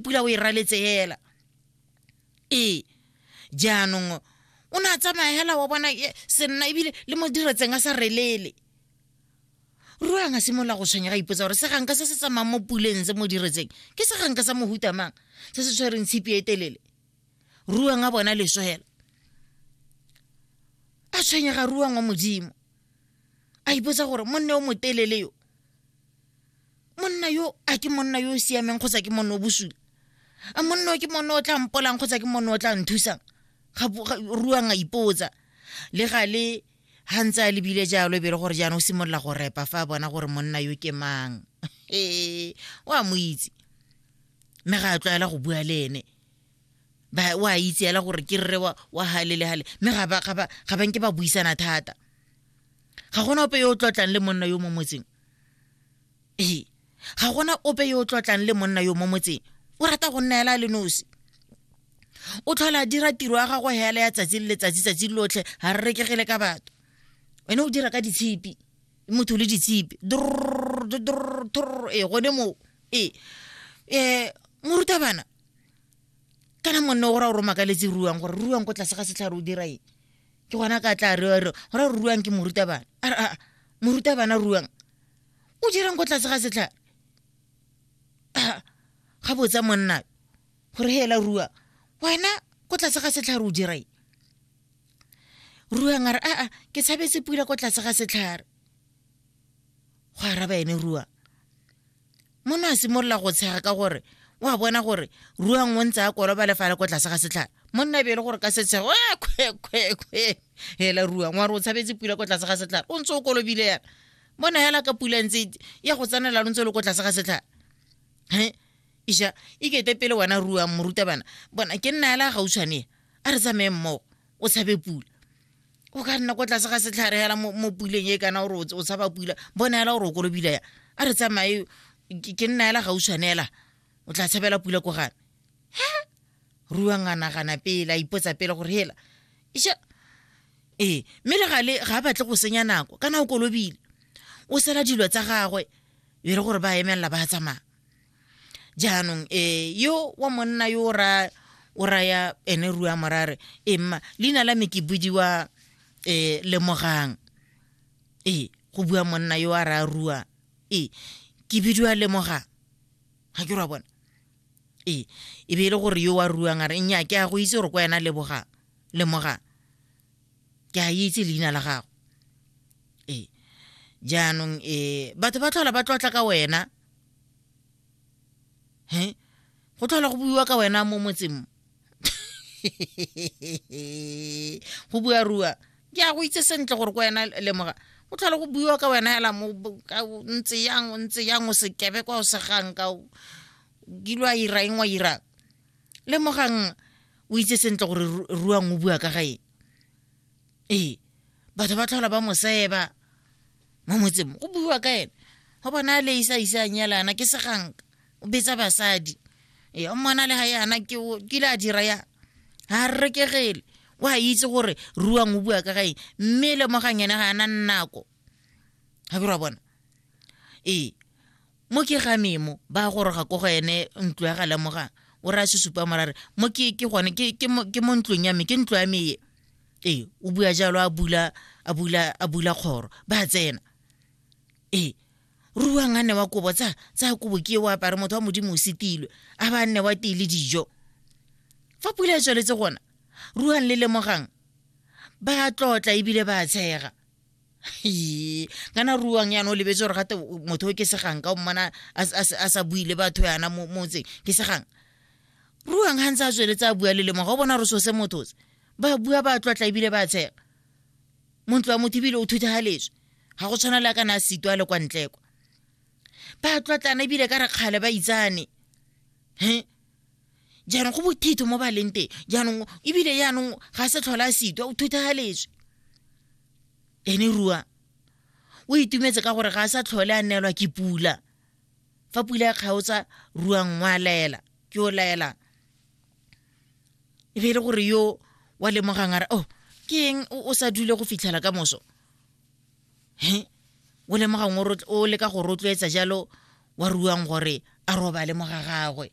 pula o e raletse hela ee jaanong o ne a tsamaya hela wa bona senna ebile le mo diretseng a sa relele ruang a simolola go tshwenyega ipotsa gore seganka se se tsamayng mo puleng se mo diretseng ke seganka sa mohutamang se se tshwereng tshipi e telele ruang a bona leso hela a tshwenyega ruang wa modimo a ipotsa gore monne o motelele yo monna yo a ke monna yo o siameng kgotsa ke monna o bosula a monna o ke monna o tla mpolang kgotsa ke monna o tla nthusang ruang a ipotsa le ga le ga ntse a lebile jalo e be le gore jaanong o simolola go repa fa a bona gore monna yo ke mang ee o a mo itse mme ga a tlwaela go bua le ene ba wa itse ela gore ke rre wa wa hale le hale mme ga ba ga ba ga ba nke ba buisana thata ga gona ope yo o tlotlang le monna yo mo motseng ee ga gona ope yo o tlotlang le monna yo mo motseng o rata go nna ela le nosi o tlhola dira tiro ya gago hela ya tsatsi le letsatsi tsatsi lotlhe ga re rekegele ka batho wene o dira ka ditshipi motho le ditshipi ee gone moo ee um morutabana kana monne o ra gore o makaletse ruang gore ruang ko tlase ga setlhare o dira eng ke gona ka tla re re gore ruang ke morutabana a re a morutabana ruang o dirang ko tlase ga setlhare ga botsa monna gore hela ruang wena ko tlase ga setlhare o dira eng ruang a re aa ke tshabetse pula ko tlase ga setlhare go araba ene ruang mona a simolola go tshega ka gore o a bona gore ruang o ntse a koloba le fa le ko tlase ga setlhare monna e be e le gore ka setshego a kgwekgwekgwe hela ruang wa re o tshabetse pula ko tlase ga setlhare o ntse o kolobile yana bona hela ka pula ntse ya go tsanela lo ntse o le ko tlase ga setlhare he isha e kete pele wena ruang moruta bana bona ke nna hela gautshwane a re tsamaye mmogo o tshabe pula o ka nna ko tlase ga setlhare hela mo puleng e kana gore o tshaba pula bona hela gore o kolobila ya a re tsamaye ke nna hela gauswane hela o tla tshabela pula ko gane he ruang a nagana pele a ipotsa pele gore hela iša ee mme le gale ga a batle go senya nako kana o kolobile o sela dilo tsa gagwe e re gore ba emelela ba tsamaya jaanong eh yo wa monna yo o ra o raya ene rua morare e mma leina la me ke budiwa eh lemogang e go bua monna yo a raya rua e ke bidiwa lemogang ga ke rwa bona e e be e le gore yo wa ruang a re nnya ke a go itse gore kwa ena lebogang lemogang ke a itse leina la gago ee jaanong e batho ba tlhola ba tlotla ka wena he go tlhola go buiwa ka wena mo motseng mo go bua rua ke a go itse sentle gore ko wena lemoga go tlhola go buiwa ka wena hela mo ntse yang o ntse yang o sekebe kwa o segang ka o kile wa ira eng wa irang lemogang o itse sentle gore Ru- ruang o bua ka ga eng ee batho ba tlhola ba moseba mo motseng mo, go buiwa ka ene go bona a le isa isa a nyalana ke seganka o betsa basadi ee o mmona le ga yana ke o- ke ile a dira ya ga a rekegele o a itse gore ruang o bua ka ga eng mme lemogang ene ga a na nako ga bira bona ee mo ke gane mo ba goroga ko go ene ntlo ya ga lemoga o re a sesupa morare mo ke ke gone ke ke mo ke mo ntlong ya me ke ntlo ya me e ee o bua jalo a bula a bula a bula kgoro ba tsena ee ruang a ne wa kobo tsa tsa kobo ke o apare motho wa modimo o setilwe a ba nne wa tee le dijo fa pula e tsweletse gona ruang le lemogang ba tlotla ebile ba tshega kana ruang yana o lebetse gore gate motho o ke segang ka o mmana a sa bui le batho yana mo motseng ke segang ruang ga ntse a tsweletse a bua le lemo ga o bona gore so se motho se ba bua ba tlotla ebile ba tshega montlo wa motho ebile o thuthegaletswe ga go tshwana le a kana a seto a le kwa ntlekwa ba tlotlana ebile ka re kgale ba itsane he jaanong go bothito mo ba leng teng jaanong ebile jaanong ga se tlhola a sitwa o thuthegaletswe ene rua o itumetse ka gore ga a sa tlhole a neelwa ke pula fa pula e kgaotsa rua nngwe a laela ke o laelang e be e le gore yo wa lemogang a re oh ke eng o sa dule go fitlhela ka moso he o lemogang o leka go rotloetsa jalo wa ruang gore a robale mo ga gagwe